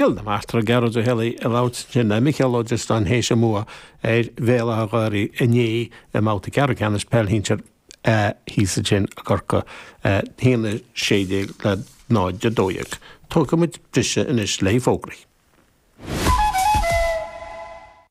Chill na Martra Gearóid Ó hÉalaithe ag labhairt ansin le Micheál Ó Drisleáin théis a mbua ar Bhéal Átha an Ghaorthaidh inné i mbabhta ceathrú ceannais peil shinsir A thíos ansin i gCorcaigh 1-16 le 0-12. Tógfaidh muid briseadh anois le haghaidh fógraí.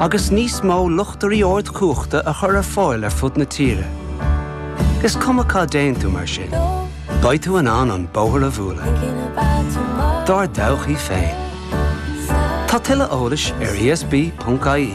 agus níos mó luchtairí ardchumhachta a chur ar fáil ar fud na tíre. Is cuma cá dtéann tú mar sin, beidh tú in ann an bóthar a bhualadh dár dtodhchaí féin. Tá tuilleadh eolais ar esb.ie.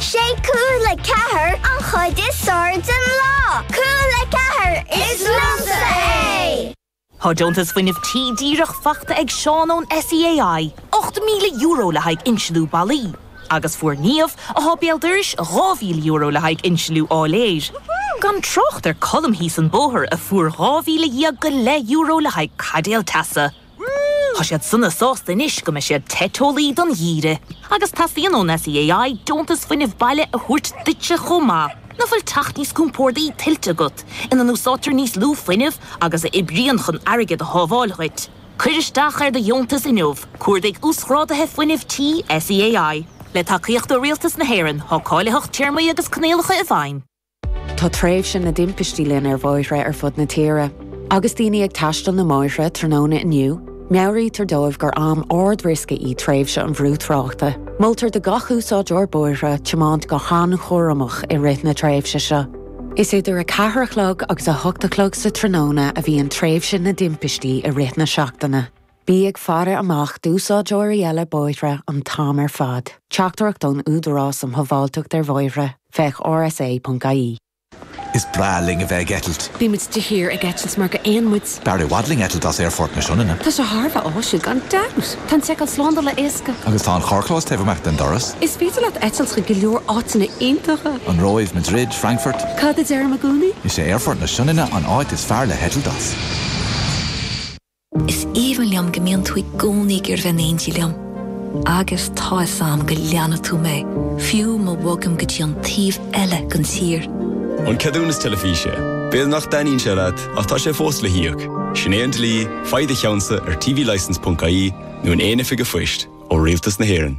Sé Cúla4 an chuid is fearr den lá. Cúla4, is liomsa é! Tá deontas fuinnimh tí díreach faighte ag Seán ón SEAI, €8,000 le haghaidh insliú ballaí, agus fuair Niamh, atá béal dorais, €2,000 le haghaidh insliú áiléir. Gan trácht ar Colm thíos an bóthar, a fuair €12,000 go leith le haghaidh caidéal teasa. Tá siad sona sásta anois go mbeidh siad te teolaí don gheimhreadh. Agus teastaíonn ón SEAI deontas fuinnimh baile a thabhairt duitse chomh maith. Nach bhfuil teach níos compórdaí tuillte agat, ina n-úsáidtear níos lú fuinnimh agus a oibríonn chun airgead a shábháil dhuit? Cuir isteach ar do dheontas inniu, Cuardaigh Uasghrádaithe Fuinnimh Tí SEAI. Le tacaíocht ó Rialtas na hÉireann, tá cáilitheacht téarmaí agus coinníollacha i bhfeidhm. Tá tréimhse na dtimpistí linn ar bhóithre ar fud na tíre. Agus daoine ag taisteal na mbóithre tráthnóna inniu, meabhraítear dóibh gur am ard-riosca í tréimhse an bhrú tráchta. Moltar do gach úsáideoir bóithre tiomáint go han-chúramach i rith na tréimhse seo. Is idir 4 a chlog agus 8 a chlog sa tráthnóna a bhíonn tréimhse na dtimpistí i rith na seachtaine. Bí ag faire amach d'úsáideoirí eile bóithre an t-am ar fad. Teachtaireacht ón Údarás um Shábháilteacht ar Bhóithre, féach rsa.ie. Is breá linn a bheith ag eitilt. Bíonn muid de shíor ag eitilt mar gur éin muid. B'fhearr i bhfad linn eitilt as Aerfort na Sionainne. Tá sé thar a bheith áisiúil gan dabht! Tá an tseiceáil slándála éasca. Agus tá an carrchlós taobh amach den doras. Is féidir leat eitilt chuig go leor áiteanna iontacha. An Róimh, Madrid, Frankfurt. Cad a deirim i gcónaí? Is é Aerfort na Sionainne an áit is fearr le heitilt as. Is aoibhinn liom go mbíonn tú i gcónaí ag iarraidh bheith in éindí liom. Agus tá fhios a'm go leanfaidh tú mé, fiú má bhogaim go dtí an taobh eile den tír. An ceadúnas teilifíse. B'fhéidir nach dtaitníonn sé leat, ach tá sé fós le híoc. Sin é an dlí, faigh do cheannsa ar tvlicense.ie nó in aon oifig a' phoist, ó Rialtas na hÉireann.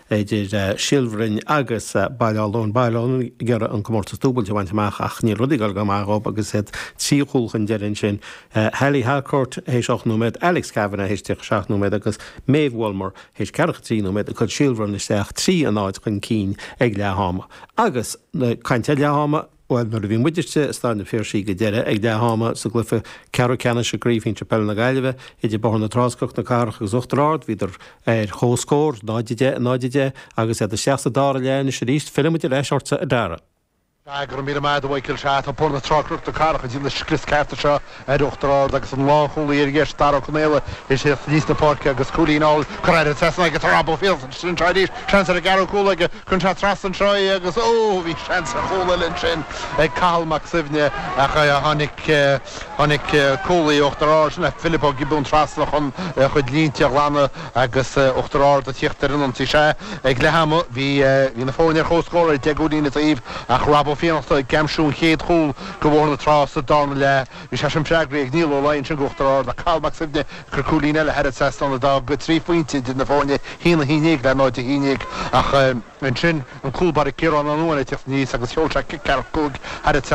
idir Síol Bhroin agus Baile Átha Luain. Baile Átha Luain ag iarraidh an comórtas dúbailt a bhaint amach ach níl rudaí ag dul go maith dhóibh agus iad trí chúl chun deiridh ansin, Haley Harcourt théis ocht nóiméad, Alex Kavanagh théis 37 nóiméad agus Maeve Wollmer théis ceathracha a trí nóiméad ag cur Síol Bhroin isteach trí a náid chun cinn ag leath-ama. Agus caint ar leath-ama! Bhuel, nuair a bhí muid istigh i Staid an Phiarsaigh go deireadh, ag leath ama, sa gcluiche ceathrú ceannais i gCraobh Shinsir Peile na Gaillimhe, idir Bóthar na Trá-Cnoc na Cathrach agus Uachtar Ard, bhíodar ar chomhscór, 0 10 in 0 10, agus iad isteach sa dara leath anois arís. Fillfidh muid ar ais ortsa, a Dara. Go raibh míle maith agat, a Mhíchíl. Sea, tá Bóthar na Trá-Cnoc na Cathrach ag déanamh scrios ceart anseo. Ar Uachtar Ard agus an lánchúlaí ar dheis, Dara Ó Conaola, ag tíocht aníos na páirce agus cúilín álainn curtha thar an trasnán aige, tá Rob Ó Fiannachta anseo arís, seans ar a dhara cúl aige, cuireann sé trasna anseo é agus ó! bhí seans ar chúl eile ansin ag Cathal Mac Suibhne ach tháinig cúlaí Uachtar Ard, sin é Philip Ó Giobúin trasna chun a chuid línte a ghlanadh agus Uachtar Ard ag tíocht ar an ionsaí. Sea, ag leath ama, bhí na foirne ar chomhscór, deich gcúilín an taobh, ach Rob Ó Fiannachta ag aimsiú an chéad chúl Go Bhóthar na Trá sa darna leath, bhí sé sin freagraithe ag Niall Ó Laoi ansin go Uachtar Ard ach Cathal Mac Suibhne ag cur cúilín eile thar an trasnán a d'fhág trí phointe idir na foirne 1-11 le 0-11 ach ansin an cúlbaire Ciarán Ó Nuáin ag teacht aníos agus sheol sé cic ceathracha cúig thar an